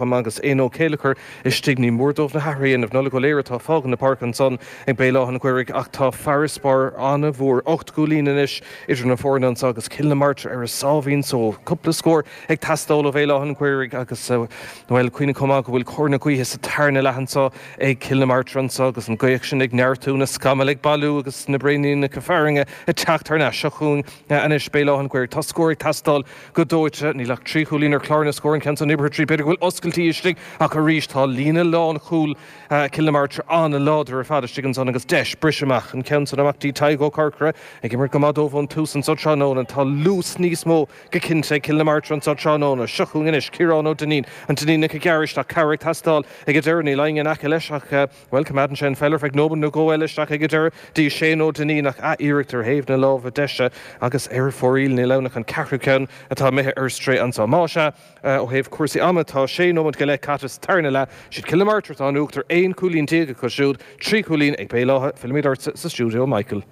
Tom agus Eoin Ó Céilleachair istigh, ní mór dóibh na hathruithe a dhéanamh. Nollaig Ó Laoire, atá ag fágaint na páirce ansan ag Béal Átha an Ghaorthaidh ach tá farasbarr an-mhór, ocht gcúilín anois, idir na foirne anso agus Cill na Martra ar a sáimhín só. Cúpla scór ag teastáil ó Bhéal Átha an Ghaorthaidh agus, bhuel, cuimhnigh chomh maith go bhfuil cóir na gaoithe sa tarna leath anso ag Cill na Martra anso agus an ghaoth sin ag neartú, na scamaill ag bailiú agus na braoníneacha fearthainne ag teacht thar n-ais seo chugainn anois. Béal Átha an Ghaorthaidh, Tá scór ag teastáil. Go dóite, níl ach trí chúilín ar chlár na scór an ceann san oibrithe tríd, b'fhéidir go bhfuil oscailtí istigh ach arís tá líne lánchúl Cill na Martra an-láidir ar fad istigh ansan agus deis briseadh amach an ceann san amach dtí Tadhg Ó Corcora ag imirt go maith dóibh ón tús anso tráthnóna. Tá luas níos mó go cinnte ag Cill na Martra anso tráthnóna. Seo chugainn anois Ciarán Ó Duinnín, an Duinníneach ag gearradh isteach cabhair ag teastáil ag an deireadh, níl éinne in aice leis ach. Bhuel, coimeádann sé an pheil ar feadh nóimeant nó dhó eile isteach aige ar deireadh dtí Shane Ó Duinnín, ach athiarracht ar thaobh na láimhe deise, agus ar fóraoil, níl ann ach an ceathrú ceann atá imithe ar strae anso. Más ea, ó thaobh cúrsaí ama, tá sé nóimeant go leith caite sa tarna leath. Siad Cill na Martra atá in uachtar, aon chúilín déag acu siúd, trí chúilín ag Béal Átha. Fillimid ortsa sa stiúideo, a Mhichael.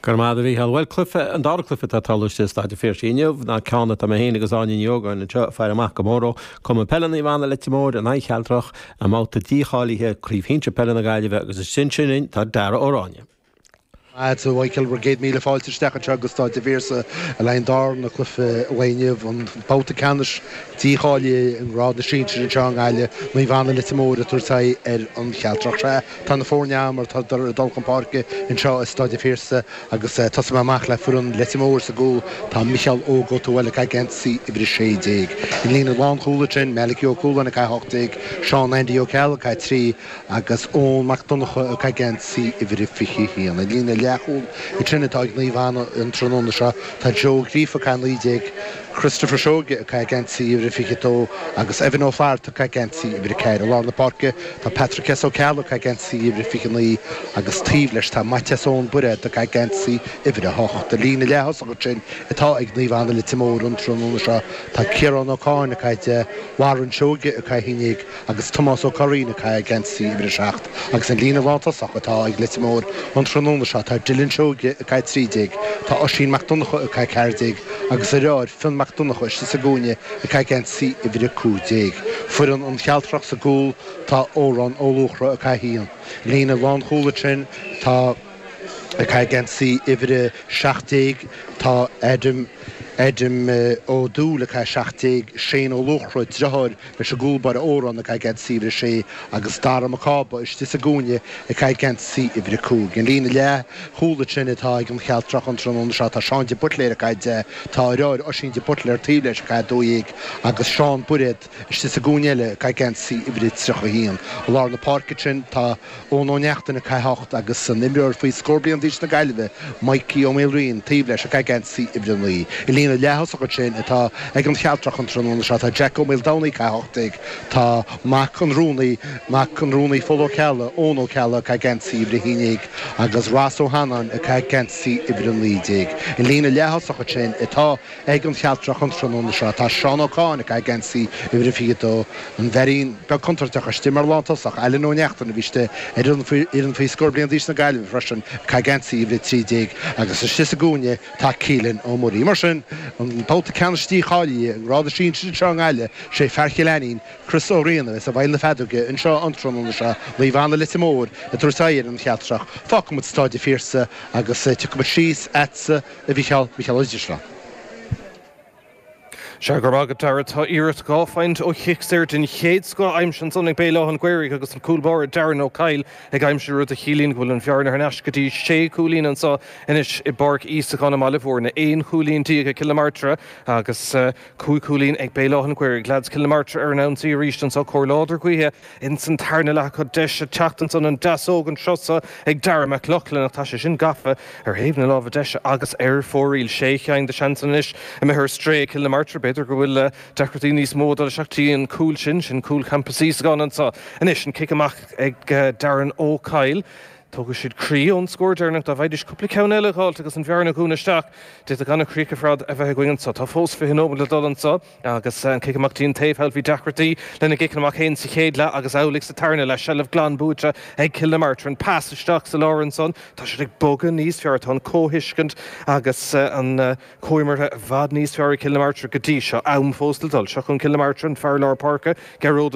Go raibh maith agat, a Mhícheáil. Bhuel, cluife, an dara cluife atá tarlaithe i Staid an Phiarsaigh inniu ná ceann atá mé féin agus Áine Ní Ógáin anseo ag faire amach go mór dó, Cumann Peile Naomh Anna, Leitir Móir, in aghaidh Chealtrach, i mbabhta dícháilithe Craobh Shinsir Peile na Gaillimhe agus ansin sin linn tá Darragh Ó Ráinne. Go raibh maith agat, a Mhícheáil, bhur gcéad míle fáilte isteach anseo go Staid an Phiarsaigh le haghaidh an darna cluife an lae inniu, an babhta ceannais dícháilithe i ngrád na sinsear anseo i nGaillimh, Naomh Anna, Leitir Móir ag tabhairt aghaidh ar an Chealtrach. Sea. Tá na foirne agam mar atádar ag dul chun páirce anseo i Stáid an Phiarsaigh agus tosóidh mé amach le foireann Leitir Móir. Sa gcúl tá Micheál Óg Ó Tuathail, ag caitheamh geansaí uimhir a 16. I líne na lánchúlaithe ansin, Malachy Ó Cualáin, ag caitheamh 18, Seán Andy Ó Ceallaigh, ag caitheamh 3, agus Eoin Mac Donnacha, ag caitheamh geansaí uimhir a 21. I líne leathchúlaithe ansin atá ag Naomh Anna an tráthnóna seo. Tá Joe Ó Gríofa, ag caitheamh 19, Christopher Seoige ag caitheamh geansaí uimhir a 22 agus Evan Ó Flatharta ag caitheamh geansaí uimhir a ceathair. I lár na páirce tá Patrick S Ó Ceallaigh ag caitheamh geansaí uimhir a 29 agus taobh leis tá Maitias Eoin Bairéad ag caitheamh geansaí uimhir a hocht. I líne leaththosach ansin atá ag Naomh Anna Leitir Móir an tráthnóna seo. Tá Ciarán Ó Cáin ag caitheamh deich, Warren Seoige ag caitheamh a haon déag, agus Tomás Ó Curraoin ag caitheamh geansaí uimhir a seacht, agus an líne lántosach atá ag Leitir Móir an tráthnóna seo, tá Dylan Seoige ag caitheamh trí déag, tá Oisín Mac Donnacha ag caitheamh ceathair déag, agus a dhriotháir, Fionn Mac Donnacha istigh sa gcúinne ag caitheamh geansaí uimhir a cúig déag. Foireann an Chealtrach sa gcúl, tá Odhrán Ó Luachra ag caitheamh a haon, i líne lánchúlaithe ansin, tá ag caitheamh geansaí uimhir a seacht déag, tá Adam, Adam Ó Dúill ag caitheamh a seacht déag, Shane Ó Luachra, driotháir, Is i gcúl baire Órán ag caitheamh geansaí uimhir a sé agus Dara Mac Cába istigh sa gcúinne ag caitheamh geansaí uimhir a cúig. An líne leathchúlaithe ansin atá ag an Chealtrach an tráthnóna seo tá Seán de Buitléir ag caitheamh dó, tá a dheartháir Oisín de Buitléir taobh leis ag caitheamh dó dhéag agus Seán Bairéad istigh sa gcúinne eile ag caitheamh geansaí uimhir a tríocha a haon. I lár na páirce sin tá. Eoin Ó Neachtain, ag caitheamh a hocht, agus an imreoir faoi scór bliain d'aois na Gaillimhe, Mikey Ó Maoilraoin, taobh leis, ag caitheamh geansaí uimhir a naoi. I líne na leath-thosaithe ansin atá ag an Chealtrach an tráthnóna seo, tá Jack Ó Maoldomhnaigh, ag caitheamh a hocht déag, tá mac an rúnaí, mac an rúnaí Pól Ó Ceallaigh, Eoin Ó Ceallaigh, ag caitheamh geansaí uimhir a haon déag, agus Ross Ó hAnnáin, ag caitheamh geansaí uimhir a naoi déag. I líne na leath-thosaithe ansin atá. ag an Chealtrach an tráthnóna seo. Tá Seán Ó Catháin ag caitheamh geansaí uimhir a 22, an firín beag contúirteach istigh mar lántosach Ailean Ó Neachtain a bhí istigh ar fhoireann faoi scór bliain d'aois na Gaillimhe freisin ag caitheamh geansaí uimhir a 13 agus istigh sa gcúinne tá Keelan Ó Muirí. Mar sin, an babhta ceannais dícháilithe i ngrád na sinsear anseo i nGaillimh, is é fear Chill Ainnín, Chris Ó Riain a bheas i bhfeighil na feadóige anseo an tráthnóna seo. Naomh Anna, Leitir Móir, ag tabhairt aghaidh ar an Chealtrach. Fágfaimid Stáid a' Phiarsaigh agus tiocfaimid síos agatsa. A Mhicheáil, Micheál Oide srath. Seadh, go raibh maith agat, Darragh. Tá iarracht dhá phointe ó chic saor den chéad scoth aimsithe ansan ag Béal Átha'n Ghaorthaidh agus an cúl báire Darren Ó Coill ag aimsiú, rud a chiallaíonn go bhfuil an bhearna thar n-ais go dtí sé chúilín anso anois i bPáirc Íosagáin i mBaile Mhúirne. Aon chúilín déag ag Cill na Martra agus cúig chúilín ag Béal Átha'n Ghaorthaidh. Leads Chill na Martra ar an ionsaí arís anso. Cóir láidir gaoithe. Ins an tarna leath acu deis a teacht ins an an deasóg an turas so ag Darragh Mac Lochlainn ach tá sé sin gafa ar thaobh na láimhe deise agus ar fóraoil sé cheann de sheansanna anois imithe ar strae ag Cill na Martra. B'fhéidir go bhfuil deacrachtaí níos mó ag dul isteach go dtí an cúl sin, sin cúl Champas Íosagáin anseo. Anois an cic amach ag Darren Ó Coill. Tógfaidh siad croí ón scór deireanach dá bhfaighdís cúpla ceann eile a dh'fháilt agus an bhearna dhúnadh isteach. D'fhéadfadh an-chríoch ar fad a bheith againn anseo. Tá fós fiche nóiméad le dul anseo. Agus an cic amach dtí an taobh thall, bhí deacrachtaí lena gciceanna amach féin sa chéad leath agus amhlaidh sa tarna leath. Seilbh glan buaite ag Cill na Martra. An pas isteach sa lár ansan, tá siad ag bogadh níos fearr, tá an chomhthuiscint agus an chomhimirt i bhfad níos fearr ag Cill na Martra go dtí seo. Am fós le dul. Seo chugainn Cill na Martra, an fear lár páirce, Gearóid Ó.